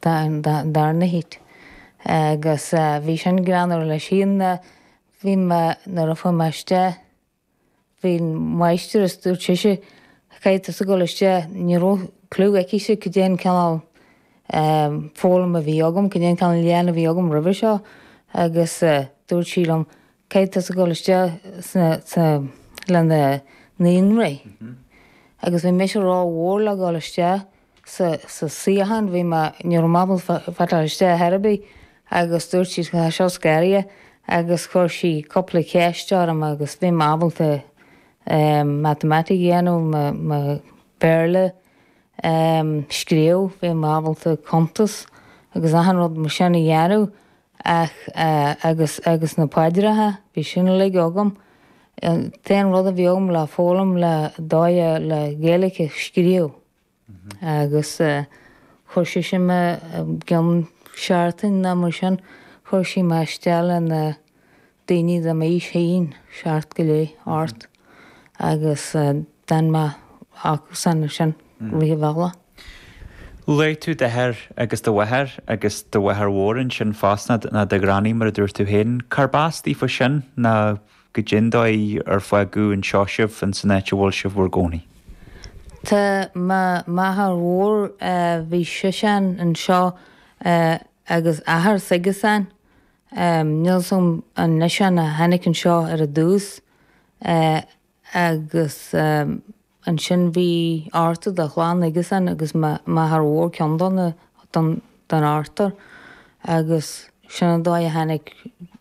dar ndóigh agus bhí sin greannmhar leis nuair a fuair mé isteach bhí an máistreas dúirt sí caithfidh tusa dul isteach ní raibh clue aicise cad é an cineál foghlaim a bhí agam cad é an cineál léann a bhí agam roimhe seo agus dúirt sí liom caithfidh tusa dul isteach sna sa le na naíonraí agus bhí mise ró mhór le dhul isteach sa suíochán, bhí mé, ní raibh mé ábalta fáil isteach ar bith agus dúirt sí tá seo scaraithe agus chuir sí cúpla ceist orm agus bhí mé ábalta matamaitic a dhéanamh, mo Bhéarla a scríobh, bhí mé ábalta cuntas agus achan rud mar sin a dhéanamh ach agus, agus na paidreacha, bhí sin uilig agam. An t-aon rud a bhí agam le foghlaim le, dóigh le Gaeilge a scríobh. Agus chuir sí ansin mé i gcionn seachtain nó mar sin, chuir sí mé isteach le na daoine de m'aois féin, seacht go leith, ocht. Agus d'fhan mé acusan ansin rith an bhealaigh. Luaigh tú d'athair agus do mháthair agus do mháthair mhór ansin fosta, nó do ghranny mar a dúirt tú féin. Cárb as daofa sin? Nó goidé an dóigh ar fágadh anseo sibh, ins an áit a bhfuil sibh bhur gcónaí. Tá m'athair mór, bhí sisean anseo agus athair s'aigesean, níl fhios an eisean a tháinig anseo ar an dtús agus ansin bhí ochtar de chlann aigesean agus m'athair mór ceann den ochtar agus sin an dóigh a tháinig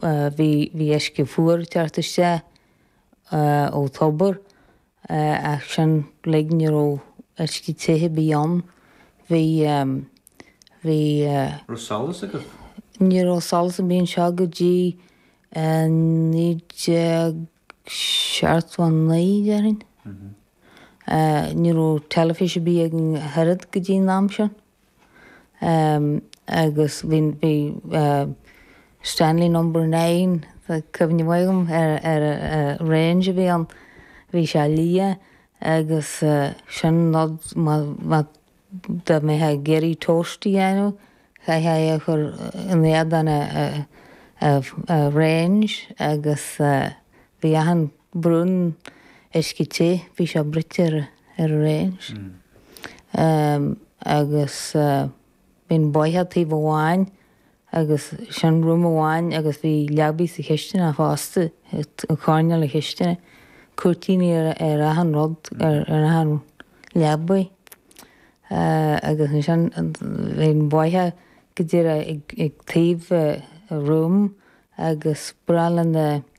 Bhí uisce fuar ag teacht isteach ó thobar ach sin uilig ní raibh uisce te ar bith ann. Bhí. raibh solas agat? Ní raibh solas ar bith anseo go dtí 1979 déarfainn. Ní raibh teilifís ar bith againn ach oiread go dtí an am sin. agus bhí Stanley Number Nine, tá cuimhne mhaith agam ar ar range a bhí ann, bhí sé liath agus sin nó dá mbeifeá ag iarraidh toast a dhéanamh chaithfeá é a chur in éadán a range agus bhí achan Brúnn uisce te, bhí sé bruite ar an range agus bhí an bóitheach ar taobh amháin agus seanroom amháin agus bhí leabaidh sa chistineach fosta, i gcoirnéal na cistine, cúirtíní ar achan rud, ar achan leabaidh agus ansin bhí an bóitheach go díreach ag taobh an room agus ba ghnách le na.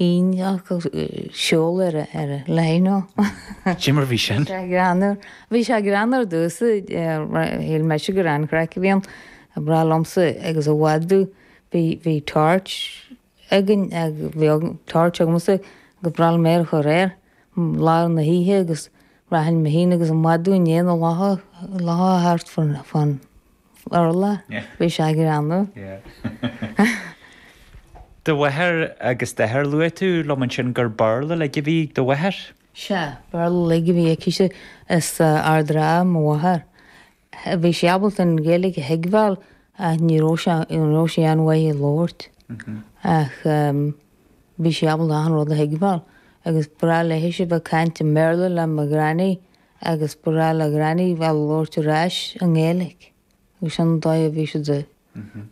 Iontach siúl ar a lae nó? Cad é mar a bhí sin? Bhí sé greannmhar, bhí sé greannmhar ar dtús, shíl mise gur an-chraic a bhí ann. Ba ghnách liomsa agus an mhadadh bhí bhí torch againn agus bhí torch agamsa agus ba ghnách liom é a chur air i lár na hoíche agus rachainn mé féin agus an mhadadh i ndiaidh na lucha thart fán urlár. Bhí sé greannmhar. Do mháthair agus d'athair Luaigh tú liom ansin gur Béarla uilig a bhí ag do mháthair. Sea, Béarla uilig a bhí aicise, as Ard an Rátha mo mháthair. Bhí sí ábalta an Ghaeilge a thuigbheáil ach ní raibh sí ní raibh sí an-mhaith á labhairt. Ach bhí sí ábalta achan rud a thuigbheáil agus ba ghnách léithise bheith ag caint i mBéarla le mo Granny. agus ba ghnách le Granny bheith ag labhairt ar ais i nGaeilge agus sin an dóigh a bhí siad ag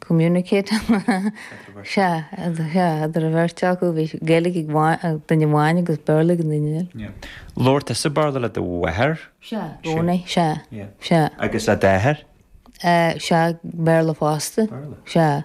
communicate sea, sea, idir an bheirt acu, bhí Gaeilge ag duine amháin agus Béarla ag an duine eile. Labhair tusa Béarla le do mháthair? Sea, i gcónaí, sea, sea. Agus le d'athair? Sea, Béarla fosta, sea.